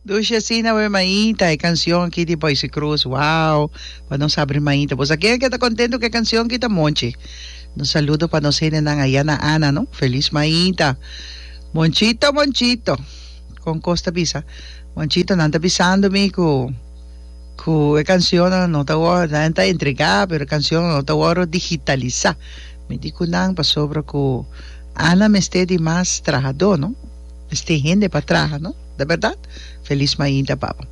Dushi asina we maita e canción ki di Boyce Cruz wow pa nos abri maita pues a ken ke ta contento ke canción ki ta monchi nos saludo pa nos hendenan aya na Ana no feliz maita monchito monchito con cos ta bisa monchito nan ta bisando mi cu Cu e cancionnan no ta wor, nan ta entrega, pero e cancionnan no ta wor digitalisa. Mi di cu nan pasobra cu Ana mester di mas trahador, no? Mester tin hende pa traha, no? Ta berdad? Feliz mainta, papa.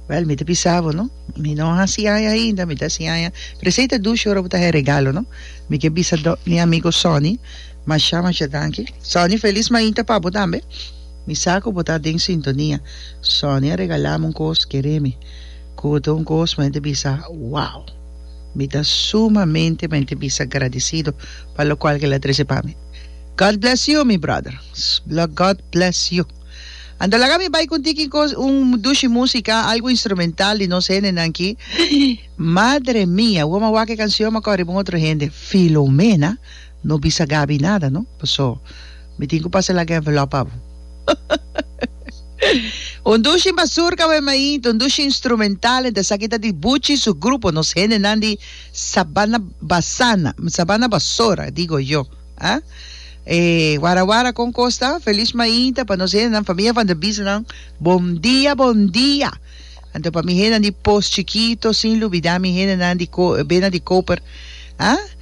Wel, mi ta bisa bo, no? Mi no haci aña ainda, mi ta haci aña presei ta dushi ora bo ta haci e regalo, no? Mi ke bisa mi amigo Sonny masha masha danki. Sonny, feliz mainta pa bo tambe. Mi sa ku bo ta den sintonia. Sonia a regalami un kos keremi ku ta un kos mei ta bisa wow. Mi ta sumamente mei ta bisa gradisido pa lokual ku el a trese pa mi. God bless you mi brother. God bless you. Anto laga mi bai konti ki kos un dushi musika algu instrumental di nos hendenan ki. Madre mia, wou mi a wak e kansion mi a kòrè pa un otro hende. Filomena. No bisa Gaby nada no, paso mi tin cu pasa laga envelop pa bo. Un dushi mazurka we maint, un dushi instrumental enta esaki ta di Buchi su grupo, nos hendenan di Sabana Basana, Sabana Basora digo yo, ah. E wara wara con cos ta? Feliz mainta pa nos hendenan, familia van der Bies'nan, bon dia, bon dia. Anto pa mi hendenan di Poos Chikito, sin lubida mi hendenan di Ko- Bena di Koper, ah.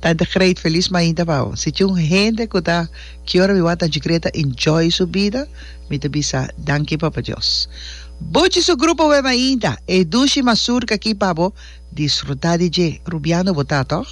Tante great felis mainta pa bo. Si tin un hende cu ta ki ora mi wak ta jigre ta enjoy su bida mi ta bisa danki papa Dios. Buchi su grupo we mainta e dushi mazurka aki pa bo disfruta di dje. Rubiano bo ta toch?